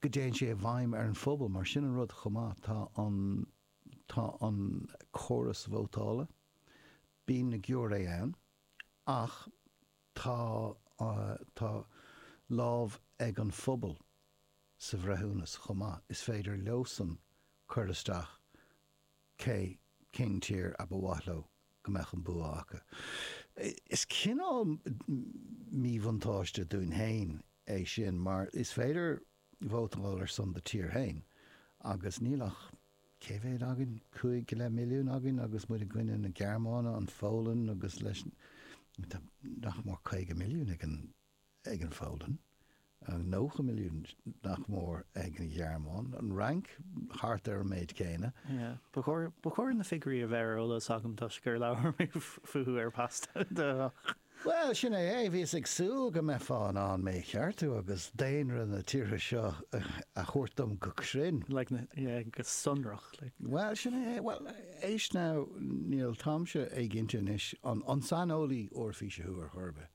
go dtéann sé i bhfeidhm ar an phobal. Mar sin an rud chomh maith, tá an tá an córas vótála, bíonn na giúiré ann, ach tá tá lámh ag an phobal sa bhreithiúnas chomh maith. Is féidir leosan cur isteach Cé, cén tír a ba mhaith leo go mbeadh an bua acu? Is cineál míbhuntáiste dúinn féin é sin mar ní féidir vótáil ar son do thír féin agus níl ach, cé mhéad againn, cúig go leith milliún againn agus muid i gcoinne na Gearmáine, an Pholainn agus leis, nach mór caoga milliún ag an. ag an Pholainn, 90 milliún, nach mór, ag an Ghearmáin, an Fhrainc, thart ar an méid céanna. Ba chóir na figiúirí a bheith ar eolas agam toisc gur labhair mé fúthu ar Paiste Deich. Bhuel, sin é é. Bhíos ag súil go mbeifeá in ann mé a cheartú agus daonra na tíortha seo a thabhairt dom go cruinn. Go sonrach, like. Bhuel, sin é é. Bhuel, éist now, níl, táimse éiginnte anois an saineolaí Eoraifíse thú ar chor ar bith.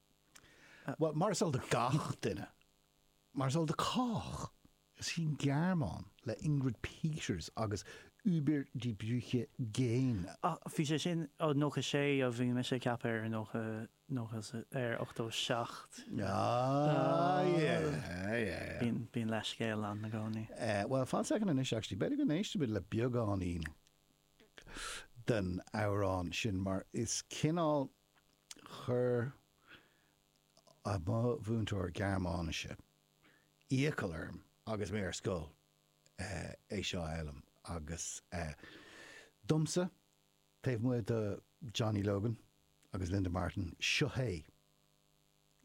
Bhuel, mar is eol do gach duine, mar is eol do chách, is í an Ghearmáin, le Ingrid Peters agus Über die Brücke gehen, Ach bhí sé sin, ó 96, ó bhí mise ag ceapadh ar 90, 90, ar 87. Aye, aye, aye. Bíonn, bíonn leithscéal ann i gcónaí. Eh, bhuel, fan soicind anois actually, b'fhéidir go n-éistfimid le beagáinín den amhrán sin mar is cineál, Chuir mo mhúinteoir Gearmáinise iachall orm agus mé ar scoil é seo a fhoghlaim agus domsa, taobh amuigh de Johnny Logan agus Linda Martin, seo é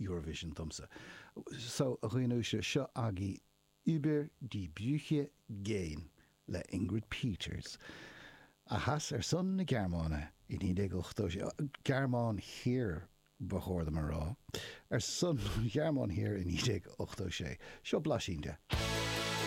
Eurovision domsa. So, a dhaoine uaisle, seo agaibh Über die Brücke gehen le Ingrid Peters, a chas ar son na Gearmáine i 1986, Gearmáin Thiar ba chóir dom a rá, ar son an Ghearmáin Thiar i 1986. Seo blaisín de.